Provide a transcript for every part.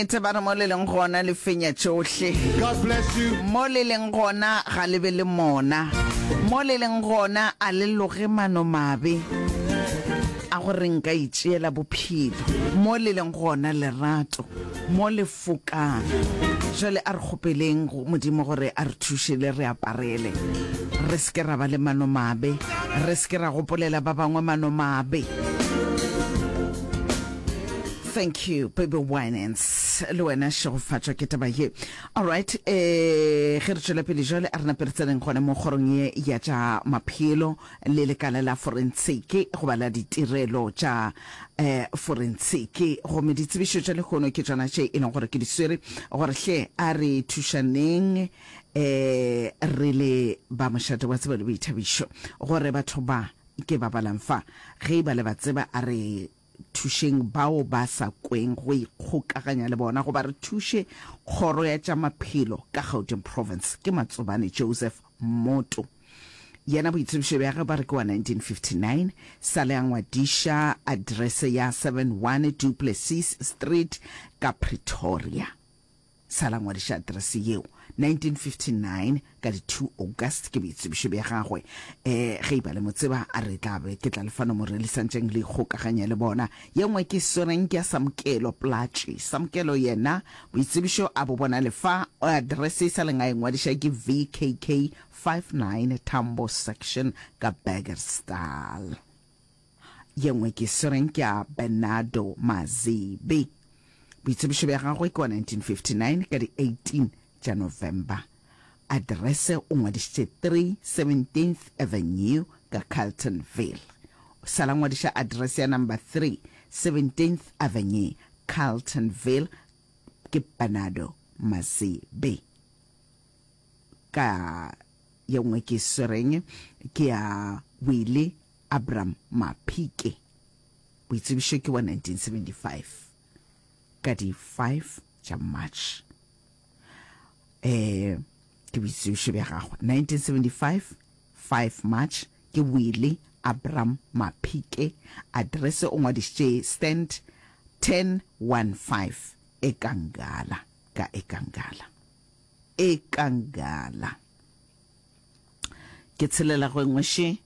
Nnete ba re mo le leng gona le fenya tšohle. God bless you. Mo le leng gona ga le be le mona. Mo le leng gona a le loge mano mabe a go re nka itšeela bophelo. Mo le leng gona lerato mo le fokang. Jwale a re kgopeleng go Modimo gore a re thuše le re aparele. Re se ke ra ba le mano mabe. Re se ke ra gopolela ba bangwe mano mabe. Thank you baby winans le wena šegofatšwa ke taba ye alright eh ge re tšwela pele jwale a re nape re tseneng gone mo kgorong ye ya tša maphelo le lekala la forensiki goba la ditirelo tša eh forensiki gomme ditsebišo tša lehono ke tšona tše e leng gore ke di swere gore hle a re thušaneng eh re le ba mošate wa tsebo le boithabišo gore batho ba ke ba balang fa ge e ba le ba tseba a re Thušeng bao ba sa kweng go ikgokaganya le bona goba re thuše Kgoro ya tša Maphelo ka Gauteng Province. Ke Matsobane Joseph Mmoto. Yena boitsebišo bja ge ba re ke wa 1959, sa le a ngwadiša address ya 71 Duplessis Street ka Pretoria. Sa la ngwadiša aterese yeo 1959 ka di 2 August ke boitsebišo bja gagwe. E, ge iba le mo tseba, a re tla be ke tla lefa nomoro le santšeng le ikgokaganya le bona. Ye nngwe ke swereng ke ya Samkelo Platši. Samkelo yena boitsebišo a bo bona le fa, aterese e sa leng a e ngwadiša ke VKK 59 Tambo Section ka Burgersdal. Ye nngwe ke Sireng ke a Bernardo Mazebe. Boitsebišo bja gagwe ke wa 1959 ka di 18 tša November. Address o ngwadišitše 3 17th Avenue ka Carltonville. O sala ngwadiša address ya number 3 17th Avenue, Carltonville ke Bernardo Mazebe. Ka ye nngwe ke Sireng ke a Willie Abram Maphike, boitsebišo ke wa 1975, ka di 5 tša March. Eh, ke boitsebišo bja gagwe, 1975, 5 March, ke Willie Abram Maphike, address o ngwadišitše stand 1015 Ekangala, ka Ekangala. Ekangala. Ke tshelela go engwe še.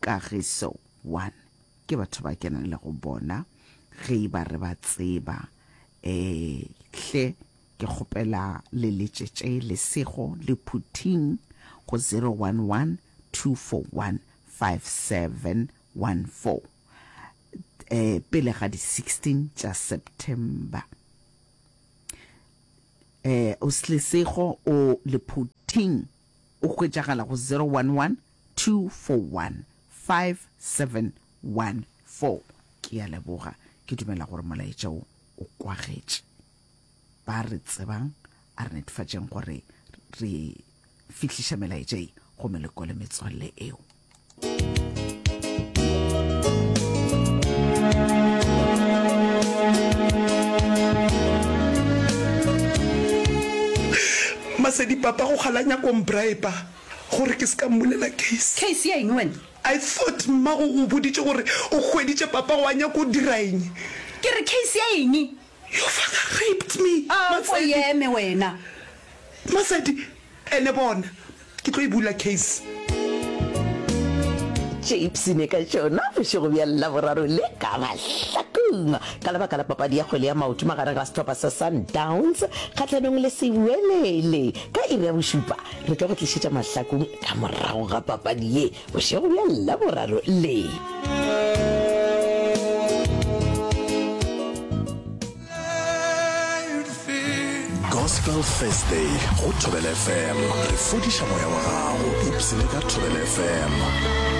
Kagiso, One, ke batho ba kenang le go bona, ge e ba re ba tseba. Um, hle, ke kgopela le letšetše lesego le phuthing go zero one one two four one five seven one four, um, pele ga di sixteen tša September. Um, lesego o le phuthing o hwetšagala go zero one one 2415714. Ke a leboga. Ke dumela gore molaetša wo o kwagetše ba re tsebang. A re netefatšeng gore re fihliša melaetša ye go meloko le metswalle eo. Masedi papa go kgalanya kombrae pa. Gore ke se ka mmulela case. Case ya eng wena? I thought mmago o boditše gore o hweditše papa wa nyako o dira eng? Ke re case ya eng? Your father raped me, Matsedi. Ako e eme wena. Matsedi, ene bona, ke tlo e bula case. Tše ipshine ka tšona bošego bja Laboraro le ka mahlakong ka lebaka la papadi ya kgwele ya maoto magareng ga sehlopha sa Sundowns kgahlanong le Sewelele ka iri ya bošupa. Re tlo go tlišetša mahlakong ka morago ga papadi ye bošego bja Laboraro le. Gospel Thursday go Thobela FM. Re fodiša moya wa gago. Ipsene ka Thobela FM.